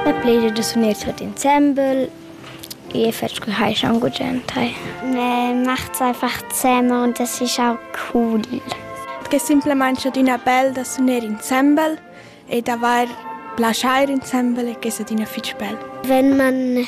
La plievgia da sun its tuot insembel. Ie fetsch cu hai schau gugent hai. Macht einfach zusammen und es ist auch cool. Tge simplamain adina bel da suner insembel e d'avair plaschair insembel e che è adina fitg bel. Wenn man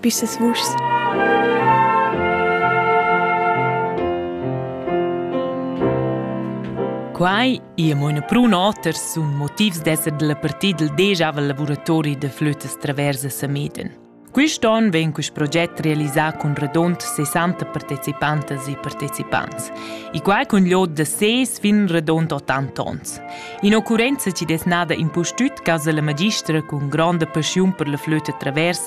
pisas vuschs. Quai è mo una prun oter sun motivs d'esser della partida del deja lavuratori de flötas traversa Sameden. Quist on vegn quist proget realisà cun radont 60 partecipantas e partecipants e quai cun l'od da ses fin radont 80 ons. In occurrenza ci des nada impustüt casa la magistra cun gronda paschiun per la flöta travers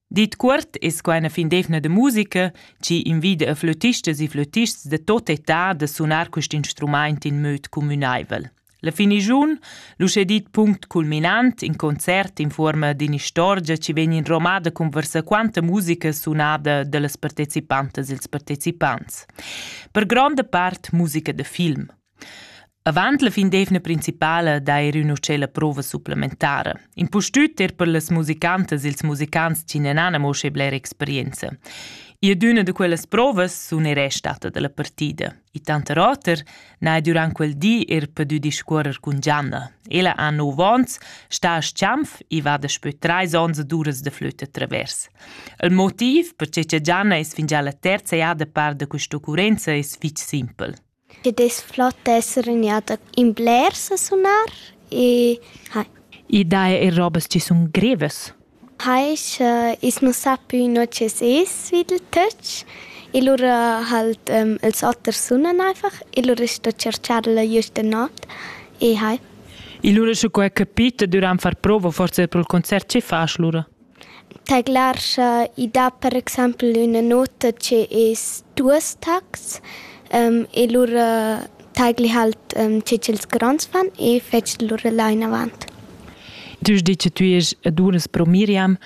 Dit cuort es quai üna findevna da musica chi invida a flötistas e flötists da tot età da sunar quist instrumaint in möd cumünaivel. La finigiun, l'uschè dit punct culminant, in concert in fuorma d'inistorgia chi vegn inromada cun varsaquanta musica sunada da las partecipantas e ils partecipants. Per gronda part musica da film. Avant la fin d'eivna principala d'eir ün uschè la prova supplementara. Impustüt er per las musicantas ils musicants chi n'han amo schi bler experienza. Ir d'üna da quellas provas sun er restada da la partida. I tanter oter n'ha durant quel di er pudü discuorrer cun Gianna. Ella ha 9 ons, sta a Schiampf e va daspö trais ons ad uras da flütta travers. Il motiv perche cha Gianna es fingià la terza jada par da quist'occurrenza es fich simpel. Che dess flot esser ün'egliada in blers a sunar e hai. I dà eir robas chi sun grevas. Hai scha i's nu sa pü no chi's es svid il töch e lura halt ils oters sunan einfach e lura sto tscherchar-la güsta not e hai. E lura sche quai capita dürant far prova forsa pro'l concert chi fasch lura? Tadlar scha i dat per exaimpel üna nota che es duos tacs e lura tagli halt che ch'els gronds fan e fetsch lura là inavant. Tu has dit che tü est a duras pro Miriam.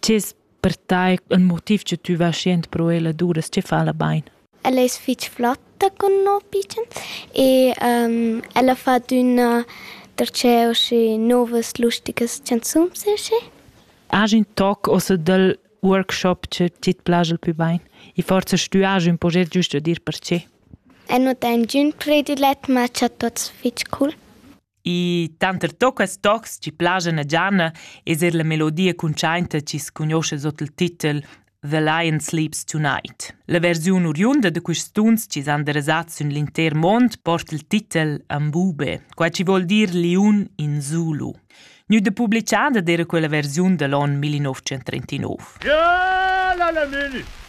Che es per tai ün motiv che tü vas jent pro ella duras? Che fa la bain? Ella es fich flotta cun no pitschens e ella fa adüna darcheu uschi nouvas lusticas chanzuns e uschi. Agen toc ossa dal workshop che tit plascha il pü bain? E forsa stü agen ün proget giüst da dir perche? Eu nu tegn giün predilet, ma cha tuots fich cool. I tanter toccas tocs chi plaschan a Gianna es eir la melodia cuntschainta chi's cugnuoscha sot il titel The Lion Sleeps Tonight. La versiun oriunda da quists tuns chi s'han derasats sün l'intер mond porta il titel Ambube, quai chi vuol dir liun in Zulu. Gnü da publichada d'eira quella versiun da l'on 1939. Ja, la la mini!